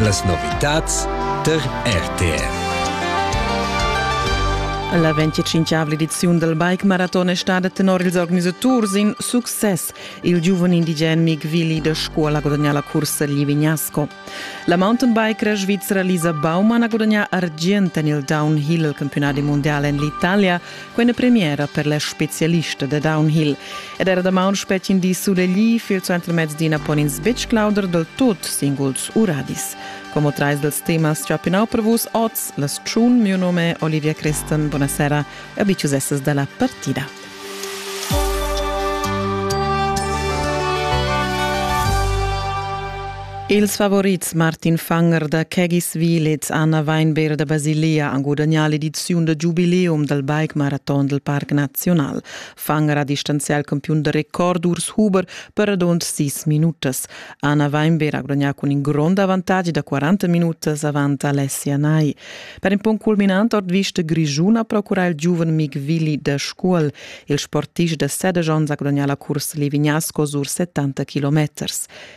Las novitads tar RTR. La 25 ediziun dal Bike Marathon è stada tenor ils organisaturs in success. Il giuven indigen Mig Willi da Scuola gudagnà la cursa Livignasco. La mountainbiker svizra Lisa Baumann ha gudagnà argient en il downhill, il campiunat mondial en l'Italia, Quella premiera per la specialista da downhill. Ed era damaun spetgin di sulegli, fil suenter mezdi pon ins betg clauder del tot singuls uradis. Como trais dels temas chapinau per vus oz, las tschun, mio nome Olivia Christen, buonasera e abiciusesses dalla partida. Ils favorits Martin Fanger da Kegis Willits Anna Weinberg da Basilia han gudagnà l'ediziun da giubileum dal bike maraton dal Parc Naziunal. Fanger ha distanzià il campiun da record Urs Huber per radund sis minutas. Anna Weinberg ha gudagnà cun in grond avantatg da 40 minutas avant Alessia Nai. Per in punct culminant ordvista Grischun ha procurà il giuven Mig Willi da Scuol. Il sportist da Seders onns ha gudagnà la cursa Livignasco sur 70 km.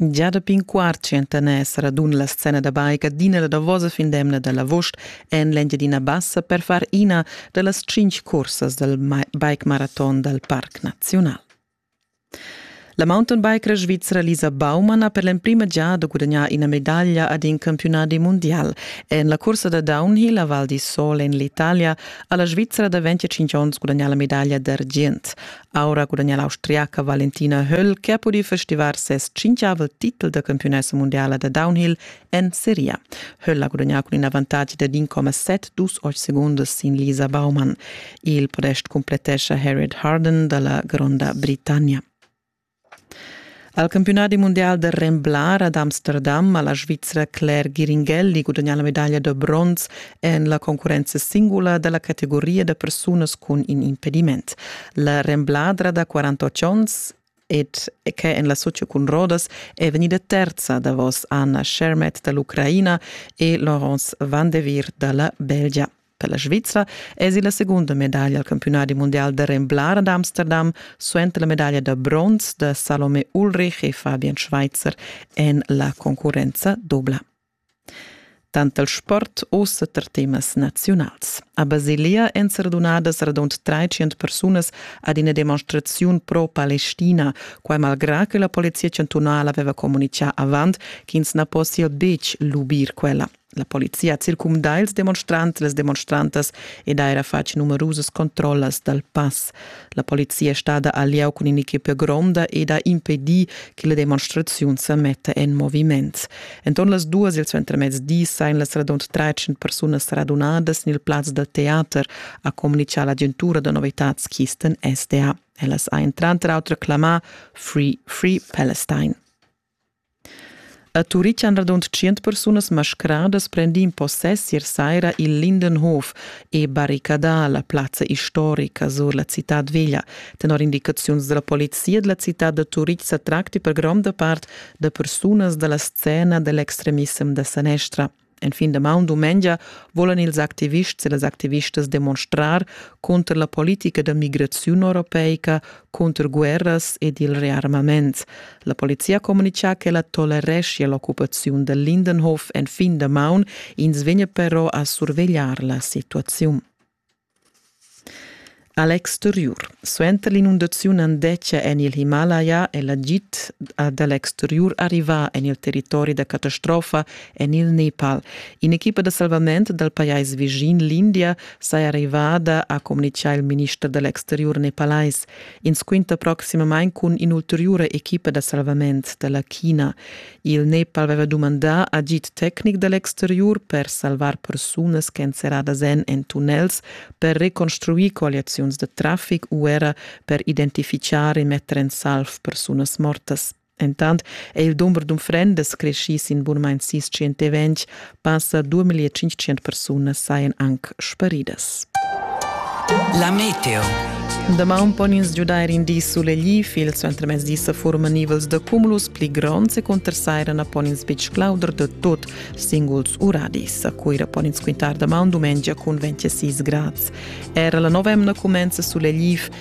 Gia dapi in quart tschientaner radun la scena da bike adina la davosa fin d'emna dall'avost en l'Engiadina Bassa per far ina da las tschintg cursas dal bike maraton dal Parc Naziunal. La mountainbiker svizra Lisa Baumann ha per l'emprima giada gudagnà ina medaglia ad in campiunadi mondial. En la cursa da downhill a Val di Sol en l'Italia ha la Svizra da 25 onns gudagnà la medaglia d'argient. Aura gudagnà l'Austriaca Valentina Höll che ha pudì festivar ses cinquiavel titel da campiunessa mundiala da downhill en seria. Höll ha gudagnà cun in avantatg da 1,7 dus ocht segundas sin Lisa Baumann. Il podest cumplettescha Harriet Harden da la gronda Britannia. Al campiunadi mundial da remblar ad Amsterdam ha la Svizra Claire Giringelli gudagnà la medaglia da bronz en la concurrenza singula da la categoria da persunas cun in impediment. La rembladra da 48 onns ed che en la Socia cun rodas è vegnida terza davos Anna Shermet da l'Ucraina e Laurence Van de Vir da la Belgia. Per la Svizra èsi la segunda medaglia al campiunadi mundial da remblar ad Amsterdam suenter la medaglia da bronz da Salome Ulrich e Fabian Schweitzer en la concurrenza dubla. Tant il sport ussa tar temas naziunals. A Basilia èn serdunadas radund 300 persunas ad ina demonstraziun pro-Palestina, quai malgrà che la polizia chantunala aveva communitgà avant ch'ins na possia betg lubir quella. La polizia ha circumdà ils demonstrants, las demonstrantas ed ha era fatg numerusas controllas dal pass. La polizia è stada al lieu cun in'equipa gronda ed ha impedì che la demonstraziun sa metta en moviment. Enton las duas il suentermezdi sain las radund 13 persunas radunadas en il plaz da teater, ha communichà l'agentura da novitads Kisten SDA. Ellas ha entran autra clamà Free Free Palestine. A Turitg han radund tschient persunas mascradas prendì in possess ier saira il Lindenhof e barricadà la plazza istorica sur la citad veglia. Tenor indicaziuns dalla polizia dalla citad da Turitg sa tracti per gronda part da persunas dalla scena dall'extremissem da sanestra. En fin da maun dumengia volan ils activists e las activistas demonstrar cunter la politica da migraziun europeica, cunter guerras ed il rearmament. La polizia comunica che la tolereschia l'occupaziun da Lindenhof en fin da maun, ins vegna però a survegliar la situaziun. Alex Thuriur. Suenter l'inundaziun andetgia en il Himalaya è l'agid da Alex Thuriur arrivà en il territori da catastrofa en il Nepal. In'equipa da salvament dal pajais vischin l'India saja arrivada, ha communitgà il minister dall'Alex Thuriur nepalais. Ins quinta proximamain cun in'ulteriura equipa da salvament da la China. Il Nepal aveva dumandà agid tecnic da l'exteriur per salvar persunas ch'èn serradas en en tunnels, per reconstruir colliaziuns da traffic u era per identifichar e metter en salv persunas mortas. Entant è il dumber d'unfrendas creschì sin bunamain sis 120 Passa 2500 persunas sajan anc sparidas. La meteo. Damaun pon ins giudair in di sulegl il suentermezdi sa forma nivels da cumulus pli gronds e conter saira na pon ins betg clauder da tot singuls uradis. A Cuira pon ins quintar damaun dumengia cun 26 grads. Era la novemna cumenza sulegl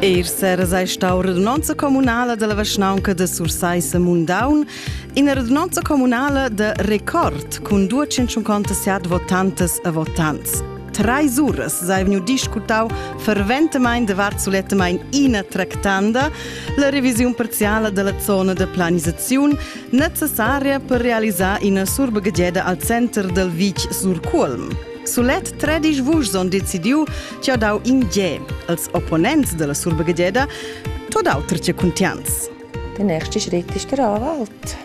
Eir seras ei stau radunonza communala dalla vischnaunca de Sursaissa Mundaun, ina radunonza communala de record cun 257 votantas e votants. Treis uras sei vegniu discutau ferventamein davart sulettamein ina tractanda la revisiun parziala della zona de planisaziun necessaria per realisar ina surbegedieda al center del vitg sur Cuolm. Sulet tredisch vuschs on decidiu che ha dau in ge als opponents della surbegedieda, tot auter che cuntians. Der nächste Schritt ist der Anwalt.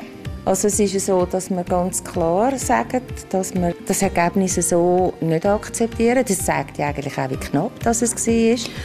Also es ist so, dass wir ganz klar sagen, dass wir das Ergebnis so nicht akzeptieren. Das zeigt ja eigentlich auch, wie knapp das es war.